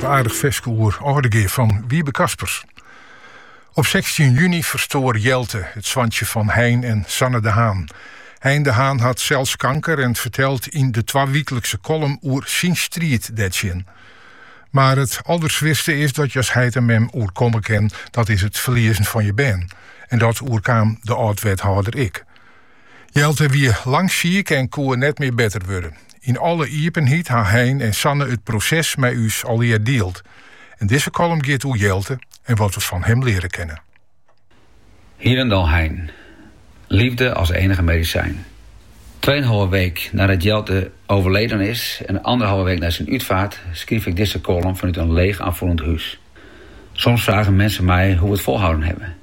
aardig ferske oer Âldegea fan Wiebe Kaspers. Op 16 juni ferstoar Jelte, it soantsje van Hein en Sanne de Haan. Hein de Haan hat sels kanker en fertelt yn de twawieklikse column oer syn striid dêrtsjin. Mar it alderswierste is dat je as heit en mem oerkomme kin, dat is it ferliezen fan je bern. En dat oerkaam de âld-wethâlder ek. Jelte wie lang siik en koe net mear better wurde. Yn alle iepenheid ha Hein en Sanne it proses mei ús allegear dield. En dizze kollum giet oer Jelte en wat we fan him leare kinne. Hjir Hein, Liefde as enige medisyn. Tweeënhalve week nadat Jelte oerleden is en anderhalve week nei syn útfaart skryf ik dizze kollum fanút in leech aanfoelend hûs. Soms frage minsken my hoe we it folhouden hawwe.